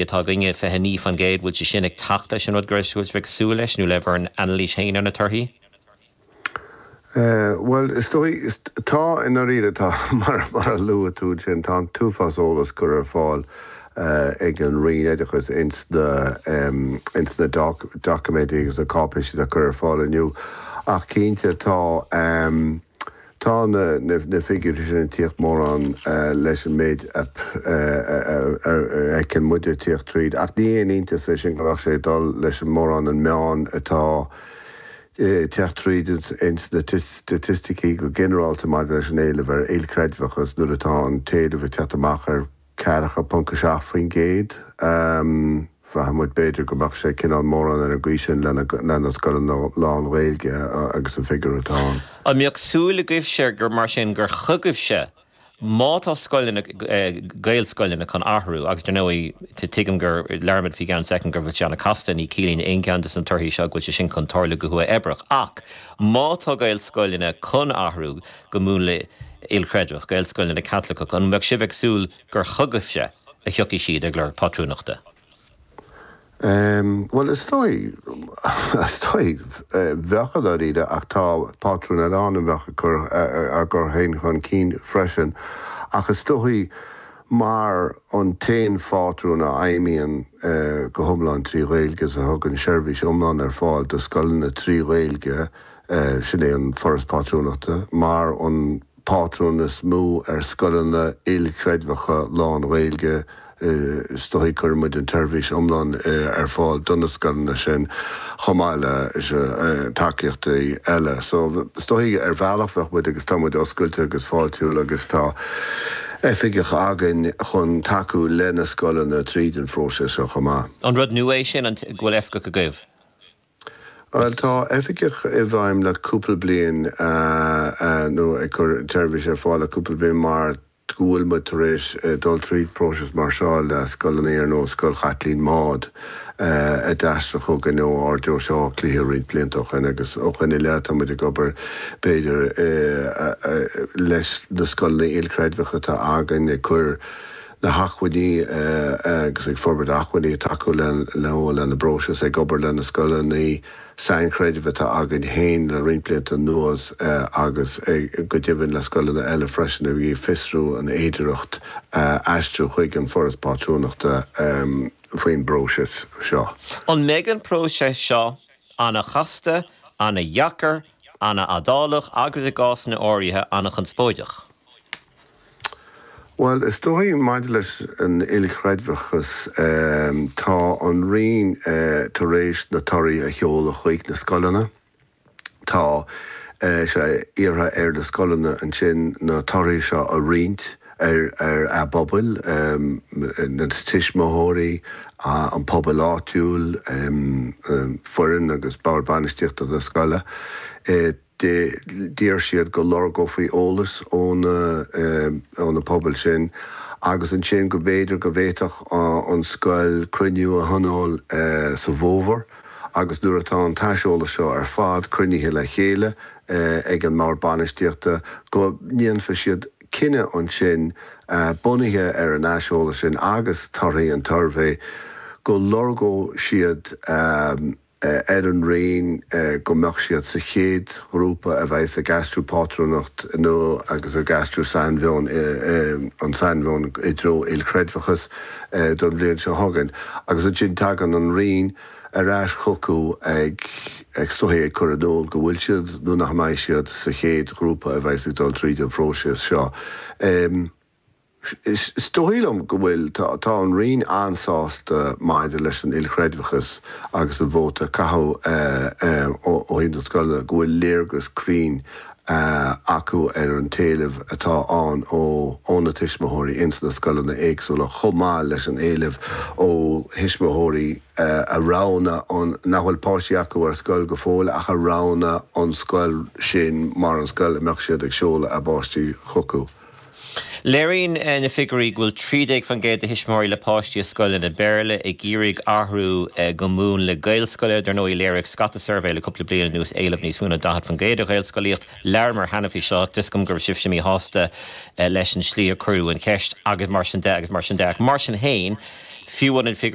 Bhí atá againne, 29 fán gcéad, an bhfuil sé sin ag teacht leis an rud go raibh sibh ag súil leis nó le bhur n-anailís féin ar na torthaí? Bhuel, is dóigh, tá i ndáiríre, tá. Mar a luaigh tú ansin, tá an t-uafás eolas curtha ar fáil ag an Roinn Oideachais ins na doiciméidí agus na cáipéisí atá curtha ar fáil inniu. Ach cinnte, tá. Tá na figiúirí sin ag tíocht mórán leis an méid a fheiceann muide ag tíocht tríd, ach ní haon iontas é sin go mbeadh sé ag dul leis an mórán an meán atá ag tíocht tríd ins na staitisticí go ginearálta maidir leis an éileamh ar ilchreidmheachas nuair atá an t-éileamh ag tíocht amach ar 4.7%. Bhraith muid b'fhéidir go mbeadh sé cineál mórán ar an gcaoi sin leis na scoileanna lán-Ghaeilge agus an figiúr atá ann. An mbeadh súil agaibhse gur mar sin gur chugaibhse má tá scoileanna, Gaelscoileanna chun athrú agus dar ndóigh tuigim go labhróimid faoi cheann soicind go bhfuil sé an-casta, ní chiallaíonn aon cheann de na torthaí seo go bhfuil sé sin chun tarlú go huathoibreach ach má tá Gaelscoileanna chun athrú, go múnla ilchreidmheach, Gaelscoileanna Caitliceacha, an mbeadh sibh ag súil gur chugaibhse a thiocfaidh siad ag lorg pátrúnachta? Bhuel, is dóigh, is dóigh, bheadh i ndáiríre ach tá pátrúin eile ann a bheadh ag cur a gcur féin chun cinn freisin ach is dóigh mar an t-aon phátrún a fheidhmíonn go hiomlán trí Ghaeilge is a thugann seirbhís iomlán ar fáil do scoileanna trí Ghaeilge sin é an Foras Pátrúnachta, mar an pátrún is mó ar scoileanna ilchreidmheacha lán-Ghaeilge. Is dóigh cuireann muid an tseirbhís iomlán ar fáil do na scoileanna sin, chomh maith le tacaíochtaí eile. So, is dóigh ar bhealach bheadh muid, agus tá muid oscailte agus fáiltiúil agus tá oifigeach againn chun tacú le na scoileanna tríd an phróiseas seo chomh maith. An rud nua é sin, an go bhfuil oifigeach agaibh? Bhuel, tá oifigeach i bhfeidhm le cúpla bliain, nó ag cur seirbhíse ar fáil le cúpla bliain mar go bhfuil muid tar éis dul trí phróiseas mar seo le Scoil an Iar nó Scoil Chaitlín Maude a d'aistrigh chugainn ó Ard-Deoise Átha Cliath roinnt blianta ó shoin agus ó shoin i leith tá muid ag obair b'fhéidir leis na scoileanna ilchreidmheacha atá againn ag cur na hacmhainní agus ag forbairt acmhainní ag tacú leo lena bpróiseas, ag obair leis na scoileanna sainchreidimh atá againn féin le roinnt blianta anuas agus go deimhin le scoileanna eile freisin a bhí ag fiosrú an fhéidireacht aistriú chuig an Foras Pátrúnachta faoin bpróiseas seo. An mbeidh an próiseas seo an-chasta, an-dheacair, an-fhadálach agus, i gcásanna áirithe, an-chonspóideach? Bhuel, is dóigh liom maidir leis an ilchreidmheachas tá an Roinn tar éis na torthaí a sheoladh chuig na scoileanna. Tá sé iarrtha ar na scoileanna ansin na torthaí seo a roinnt ar a bpobal, na tuismitheoirí, an pobal áitiúil, foireann agus bord bainistíochta na scoile. de, d'iarr siad go lorgófaí eolas ó na, ó na pobal sin agus ansin go mb'fhéidir go bhféadfadh an scoil cruinniú a thionól sa bhfómhar agus nuair atá an t-aiseolas seo ar fad cruinnithe le chéile ag an mbord bainistíochta go ndéanfadh siad cinneadh ansin bunaithe ar an aiseolas sin agus torthaí an tsuirbhé go lorgódh siad ar an Roinn go mbeadh siad sa chéad ghrúpa a bheas ag aistriú go pátrúnacht nua agus ag aistriú sainmheon, an sainmheon i dtreo ilchreidmheachas don bhliain seo chugainn. Agus ansin tagann an Roinn ar ais chucu is dóigh ag cur in iúl go bhfuil siad nó nach mbeidh siad sa chéad ghrúpa a bheas ag dul tríd an phróiseas seo. Is dóigh liom go bhfuil. Tá an Roinn an-sásta maidir leis an ilchreidmheachas agus an vóta a caitheadh ó thaobh na scoileanna, go bhfuil léargas cruinn acu ar an t-éileamh atá ann ó na tuismitheoirí ins na scoileanna éagsúla chomh maith leis an éileamh ó thuismitheoirí a roghnaigh an, nach bhfuil páistí acu ar scoil go fóill ach a roghnaigh an scoil sin mar an scoil a mbeadh siad ag seoladh a bpáistí chucu. Léiríonn na figiúirí go bhfuil 13% de thuismitheoirí le páistí i scoileanna Béarla ag iarraidh athrú go múnla Gaelscoile. Dar ndóigh, léirigh scata suirbhéanna le cúpla bliain anuas éileamh níos mó ná 40% do Ghaelscolaíocht. Labhramar cheana faoi seo. Is cosúil go raibh sibhse míshásta leis an slí a cuireadh an cheist agus mar sin de agus mar sin de. Ach mar sin féin, fiú an